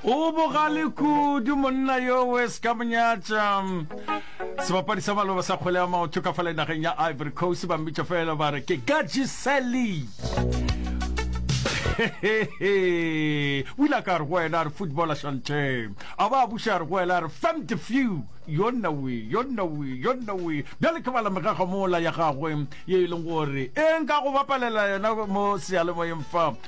O bogale kudu monna yo we se ka monyatša. Sebapadi sa maloba sa kgwele ya maoto ka fale nageng ya Ivory Coast ba mmitša fela ba re ke Gadji Sally. o ile a ka re go wena a re football a shante a ba a buša a re go wena a re fam the few yo nna we yo nna we yo nna we bjale ke bala megago mola ya gagwe ye e leng gore e nka go bapalela yona mo seyalemoyeng fa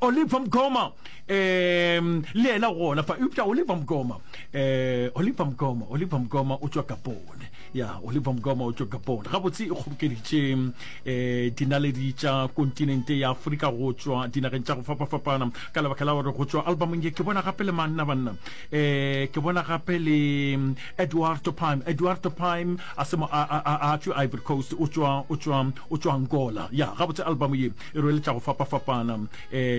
Oliver Mkoma um le yena gona fa eupša Oliver Mkoma um Oliver Mkoma Oliver Mkoma o tšwa Kapone ya Oliver Mkoma o tšwa Kapone gabotse e kgobokeditše um dinaledi tša kontinente ya Afrika go tšwa dinageng tša go fapafapana ka lebaka la gore go tšwa albumong ye ke bona gape le manna banna um ke bona gape le Eduardo Pime Eduardo Pime a se mo a tšwa Ivory Coast o tšwa Angola ya gabotse album ye e rweletša go fapafapana um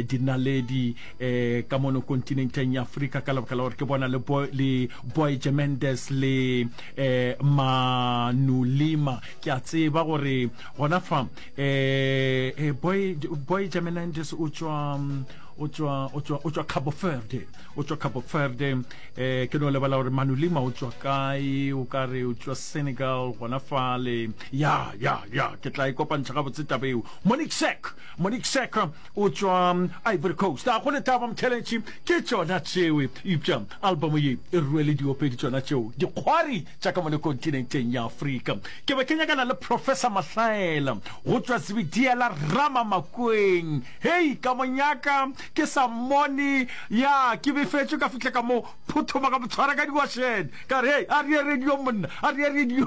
dinaledi um ka mono kontinenteng ya afrika ka lebaka la gore ke bona le boyge mendes le um manulima ke a tseba gore gona fa um boyge mendes o tswa um, o tswa o tswa o tswa Cabo Verde o tswa Cabo Verde eh ke no lebala gore Manu Lima o tswa kae o ka re o tswa Senegal gona fale ya ya ya ke tla ikopantšha e ga botse tabeo Monique Sek Monique Sek o tšwa Ivory Coast a go letaba mtheletši ke tšona tšewe ipša albomo ye e ruele diopedi tšona tšeo dikgwari tša ka mone kontinenteng ya Afrika ke be ke nyakana le Professor Mahlaela go tšwa Zibidiela Rama Makweng hei ka monyaka ke sa mmone ya ke befetšwe ka fihle ka mo phuthoma ka motshwara ka diwašene ka re hei a re ye radio monna a re ye radio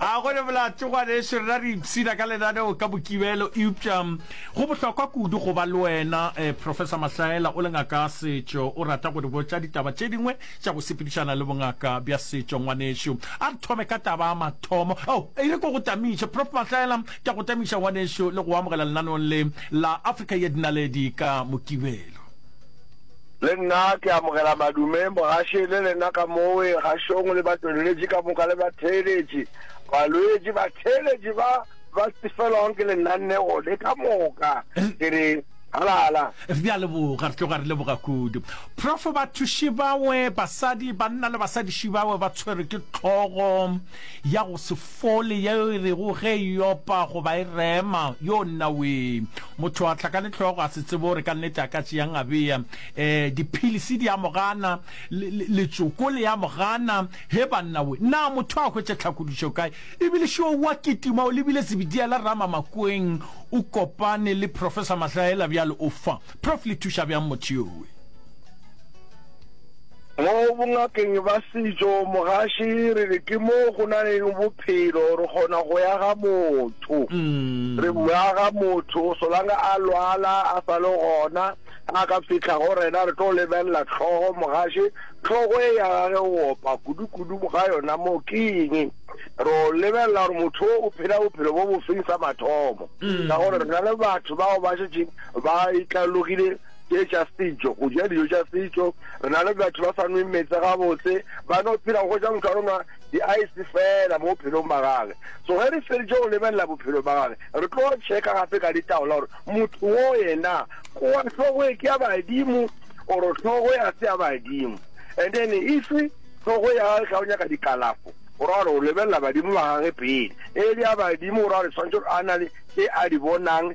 a go le bolatšogwane e šerena re ipshina ka lenaneo ka bokibelo eupša go bohlokwa kudu go ba le wena eh, professor mahlaela o le ngaka setšo o rata go di botša ditaba tše dingwe tša go sepedišana le bongaka bja setšo ngwanešo a re thome ka taba ya mathomo o oh, e re ko go tamiše prof mahlaela ke go tamiša ngwanešo le go amogela lenaneong le la africa ye dinaledi ka mokibelo Le nna ke amogela madume mogaši le lena ka mowe gašong le batweleletši ka moka le batheeletši, balwetši, batheeletši ba ba sefelwago ke lenanego le ka moka. Ke re, Halala! Re a leboga, re tloga re leboga kudu. Profo, bathuši bawe, basadi, banna le basadiši bawe ba tshwerwe ke tlhogo. ya go se fole yeo e rego ge e opa goba e rema, Yoo nnawee! Motho a hlakane hlogo a se tsebe gore ka nnete a ka tšeang a bea. E, diphilisi di a mo gana, le, le, letsoko le a mo gana. He bannawe! Na motho a hwetše tlhakodišo kae? Ebile šo o a kitima, o lebile Zebediela Ramamakweng, o kopane le Professor Mahlaela bjale o fa. Prof. Le thuša bjang motho yowe? Mo bongakeng ba setšo, mogaši re re ke mo go na leng bophelo, re kgona go ya ga motho. Mm. Re bua ga motho, solanga a lwala, a sa le gona, a ka fitlha go rena, re tlo lebelela tlhogo mogaši. Tlhogo e ya gage o opa kudu-kudu ga yona mo ke eng? Ro lebelela gore motho o phela bophelo bo bofeng sa mathomo. Mm. Ka gore re na le batho bao ba šetšeng Ba itlalogile tše tša setšo, go ja dijo tša setšo. Re na le batho ba sa nweng meetse gabotse, ba no phela go ja motho a no nwa di-ice fela mo bophelong ba gage. So ge re feditše go lebelela bophelo ba gage, re tlo checka gape ka ditaola gore motho wo yena o wa hlogo e ke ya badimo oro hlogo ya se ya badimo. And then if hlogo ya gage ga o nyaka dikalafo, o ra gore o lebelela badimo ba gage pele e le ya badimo, o ra gore tshwanetse a na le tše a di bonang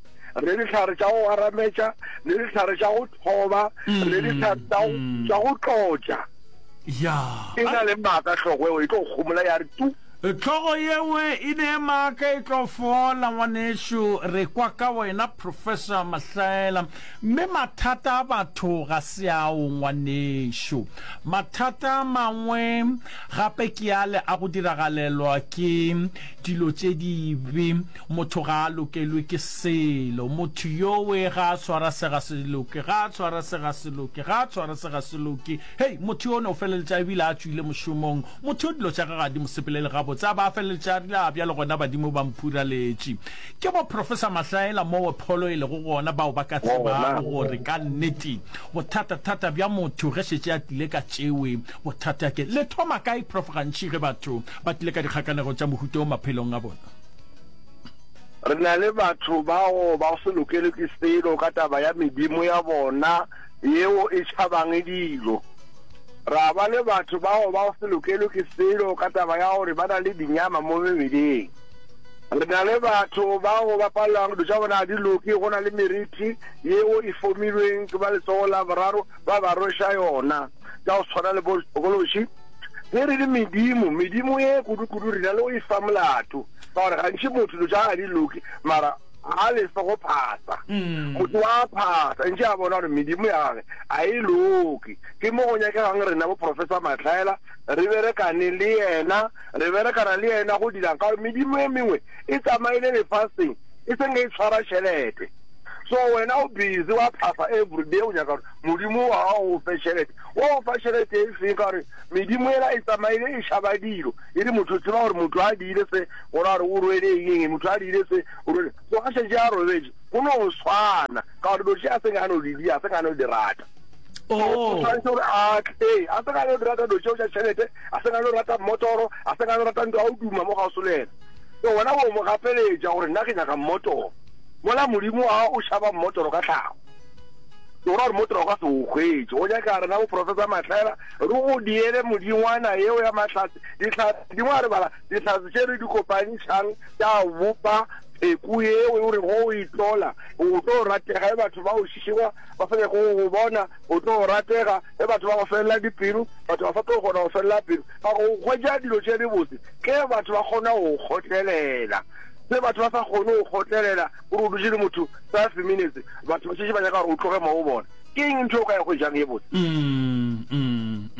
re dihlare tša go arametša le dihlare tša go thoba le mm, dihlare tša go mm. tlotša ya e na le maaka tlhogo eo e tlo gomola ya re tu e, tlhogo yewe e ne maaka e tlo fola ngwanešu re kwa ka wena professor mahlaela mme mathata a batho ga se ao ngwanešu mathata a mangwe gape ke ale a go diragalelwa ke dilo tše dibe Motho ga a lokelwe ke selo. Motho yowe ga a tshwara se ga se loke, ga a tshwara se ga se loke, ga a tshwara se ga se loke. Hei, motho yono o feleletša e bile a tšwile mošomong. Motho yo dilo tša gage ga di mo sepelele gabotse. A ba a feleletša a rile, A bjalo gona badimo ba mphuraletše. Ke boprofesa mahlaela mowe pholo e lego gona bao ba ka tsebago gore ka nnete bothatathata bja motho ge šetše a tlile ka tšewe bothata ke le thoma kae. Prof. Gantši ge batho ba tlile ka dikgakanego tša mohuta wo maphelong a bona, Re na le batho bao ba se lokelwe ke selo ka taba ya medimo ya bona yeo e tšhabang dilo. Ra ba le batho bao ba se lokelwe ke selo ka taba ya gore ba na le dinyama mo mebeleng. Re na le batho bao ba palelwang dilo tša bona ga di loke go na le meriti yeo e fomilweng ke ba letsogo la boraro ba ba rweša yona. tša go tshwana le bokološi ge re le medimo medimo ye kudu-kudu rena le go e fa molato ka gore gantši motho dilo tša ga di loke mara a le fe go phasa mm. motho wa phasa ntše a bona gore medimo ya gage a e loke ke mo go nyakegang rena boprofessor matlhaela re berekane le yena re berekana le yena go dirang ka gore medimo e mengwe e tsamaile lefaseng e seng e tshwara tšhelete so wena o busy wa phasa everyday o nyaka gore Modimo wa gago o fe šelete. O go fa šelete e feng ka gore medimo ela e tsamaile e šaba dilo. E re motho o tseba gore motho a diile se, gore a re o rwele eng eng, motho a diile se, o rwele. So a šetše a robetše, go no swana ka gore dilo tše a seng a no di dia, a seng a no di rata. Oh. O tshwanetse gore a tle, a seng a no di rata dilo tšeo tša šelete, a seng a no rata mmotoro, a seng a no rata ntho ya go duma mo ga o solela. So wena o mo gapeletša gore nna ke nyaka mmotoro. Mola Modimo wa gago o šaba mmotoro ka tlhago. o ra gore motho o ka se o hwetše o nyaka rena bo professor mahlela re go diele modingwana yeo ya mahlatse dihlatse dingwe a re bala dihlatse tše re di kopantšhang tša bopa pheko yeo o re go o itlola o tlo ratega e batho ba o šišiwa ba sa nyako go bona o tlo ratega e batho ba go felela dipelo batho ba sa tlo kgona go felela pelo ba go hwetša dilo tše di botse ke batho ba kgona go kgotlelela se batho ba sa kgone go kgotlelela O re o dutše le motho five minutes, batho ba šetše ba nyaka gore o tloge moo o bona. Ke eng ntho e o ka e hwetšang ye botse?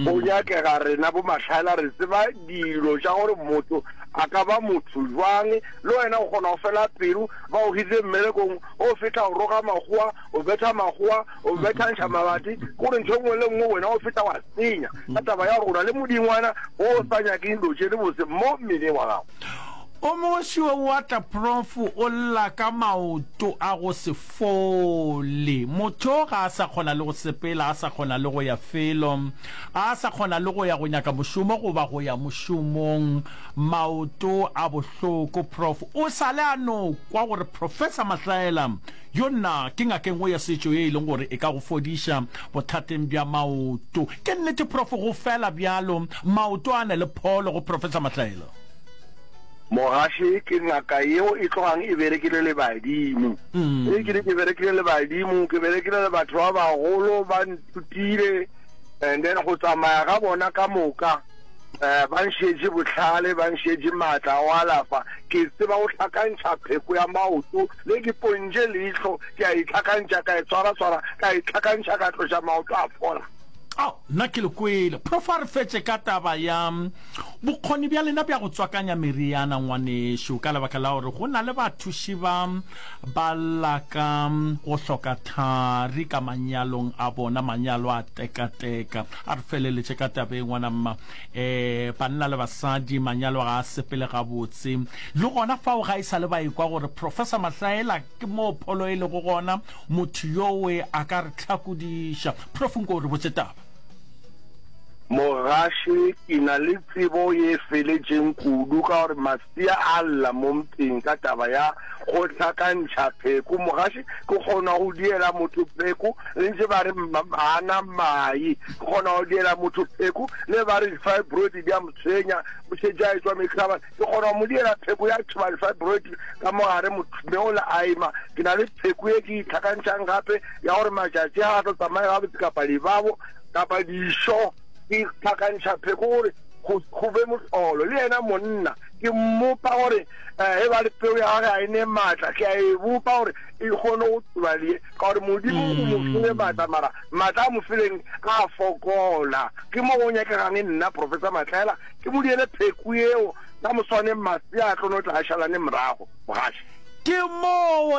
Go nyakega rena bomahlaela re tseba dilo tša gore motho a ka ba motho bjang. Le wena o kgona go fela pelo, ba go hirile mmerekong, o fetla o roga makgowa, o betha makgowa, o bethantšha mabati, ke gore ntho e nngwe le nngwe wena o fetla wa senya ka taba ya gore o na le modingwana o sa nyakeng dilo tše dibotse mo mmeleng wa gago. O mongwe siwe wa tla prof o lla ka maoto a go se fole. Motho o ga a sa kgona le go sepela, a sa kgona le go ya felo, a sa kgona le go ya go nyaka mošomo goba go ya mošomong. Maoto a bohloko prof. O sale a no kwa gore Professor Mahlaela Yo nna ke ngaka engwe ya setšo ye e leng gore e ka go fodiša bothateng bja maoto. Ke nnete prof go fela bjalo maoto a na le pholo go Professor Mahlaela? Mogaši ke ngaka yeo e tlogang e berekile le badimo. Ge ke re ke berekile le badimo ke berekile le batho ba bagolo ba nthutile and then go tsamaya ga bona ka moka um ba nšetše bohlale ba nšetše maatla a go alafa ke tseba go hlakantšha pheko ya maoto Le ke pontše leihlo, ke a e hlakantšha, ka e swara-swara, ka e hlakantšha, ka tloša maoto a fola. Ao, nna ke le kwele. Prof a re fetše ka taba ya bokgoni bja lena bja go tswakanya meriana, ngwanešu, ka lebaka la gore go na le bathuši ba ba laka go hloka thari ka manyalong a bona, manyalo a teka-teka. A re feleletše ka tabeng, ngwana mma. um banna le basadi manyalo ga a sepele gabotse le gona fao ga e sa le ba ekwa gore professor mahlaela ke moo pholo e lego gona motho yowe a ka re tlhakodiša prof nko o re botse taba Mogaši, Ke na le tsebo ye feletšeng kudu ka gore di a lla mo mpeng ka taba ya go hlakantšha pheko. Mogaši, ke kgona go diela motho pheko le ntše ba re ana mai, ke kgona go diela motho pheko le ba re di-fibroid di a mo tshwenya, o šetše a etswa mehlaba, ke kgona go mo diela pheko ya thoba di-fibroid ka mogare mme o le aima. Ke na le pheko e ke itlhakantšhang gape ya gore matšatši a tlo tsamaya gabotse kapa dibabo kapa dišo. ke tlhakantšha pheko gore go be motlolo le yena monna ke mmopa gore um e ba le peo ya gage a e ne maatla ke a e bopa gore e kgone go tsoba lee ka gore modimo o mo mm. file maatla mara maatla a mo fileng a fokola ke mo go nyakegang e nna professor matlaela ke mo diele pheko eo ka moswaneng masea a tlono tla a šalane morago mogaši Ke moo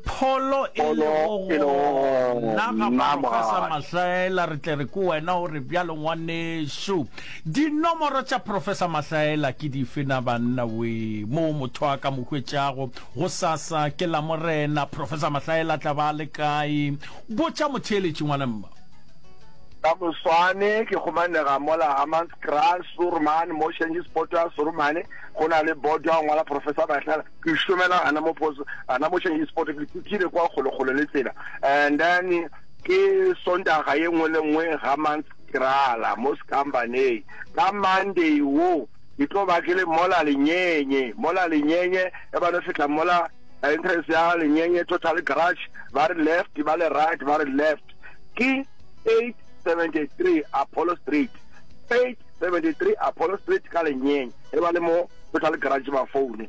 pholo e lego gona ga Profesa Mahlaela. Re tle re ko wena o re bjalo ngwanešu. Dinomoro tša Profesa Mahlaela ke dife na banna we? Moo motho a ka mo hwetšago. Go sasa ke Lamorena. Profesa Mahlaela a tla ba a le kae? Botša motheeletši ngwana mma. Ka moswane ke kgomanega mola Hammanskraal, Suurman, Moshanji's Potoa, Surumane, go na le bodo a ngwala Profesa Mahlaela. Ke šomela gana mo post gana mo change sport ke kutile kwa golo golo le tsela and then ke sontaga ye nngwe le nngwe ga month krala mo skambaneng ka monday wo ke tlo ba ke le mola lenyenye mola lenyenye e ba no fihla mola entrance ya lenyenye total garage ba re left ba le right ba re left ke 873 apollo street 8 73 Apollo Street ka Lenyeng e ba le mo Total Garage ba foune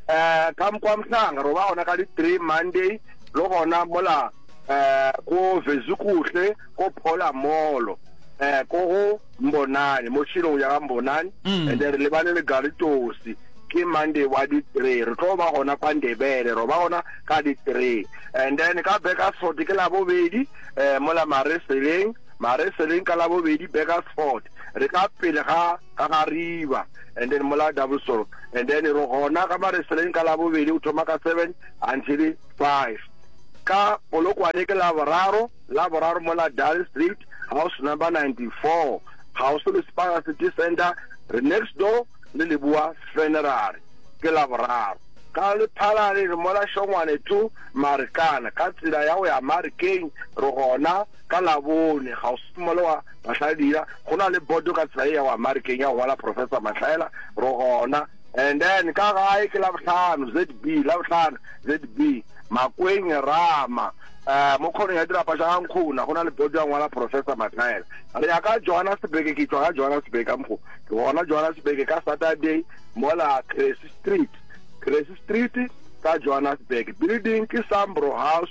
eh ka kwa mhlanga ro ba ona ka di 3 Monday lo gona mola eh ko Vezukuhle ko Phola Molo eh ko go Mbonani mo tshilong ya ga Mbonani mm. and re lebane le Galitosi ke monday wa di three re tlo ba gona kwa ndebele ro ba gona ka di three and then ka beka sote ke la bobedi um mola mareseleng Mareseleng ka labobedi Burgersfort re ka pele ga ga gariba and then mola Doublesong and then re gona ga Mareseleng ka labobedi o thoma ka seven until five ka Polokwane ke laboraro laboraro mola Dale Street house number 94 kgauswi le Spara City Center re next door le Leboa Funerary ke laboraro ka Lephalale re mola Shongwane two Marikana ka tsela ya go ya Marikeng re gona Ka Labone, kgauswi mole wa Mahladira, go na le bodo ka tsela e ya go ya Marikeng ya go ngwala Professor Mahlaela, re gona. And then ka gae ke Labohlano, ZB, Labohlano, ZB, Makweng, Rama, um, mo khonong ya dirapa tša ga Nkgona, go na le bodo ya ngwala Professor Mahlaela. Re ya ka Johannesburg, ke tšwa ka Johannesburg ka mokgo, ke gona Johannesburg ka Saturday, mola Cressy Street, Cressy Street ka Johannesburg, building ke Sambro House,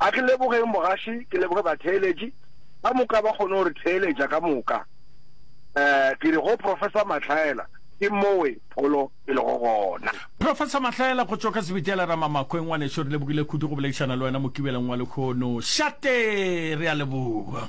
A ke lebogeng mogaši, ke leboge batheeletši ka moka ba kgone go re theeletša ka moka. Um ke re go Professor Mahlaela, ke mowe pholo e lego gona. Professor Mahlaela, go tšwa ka Sebitela Ramamakhwe, ngwaneso re lebogile kudu go boledišana le wena Mokibeleng wa lekhono. Šate! Re a leboga.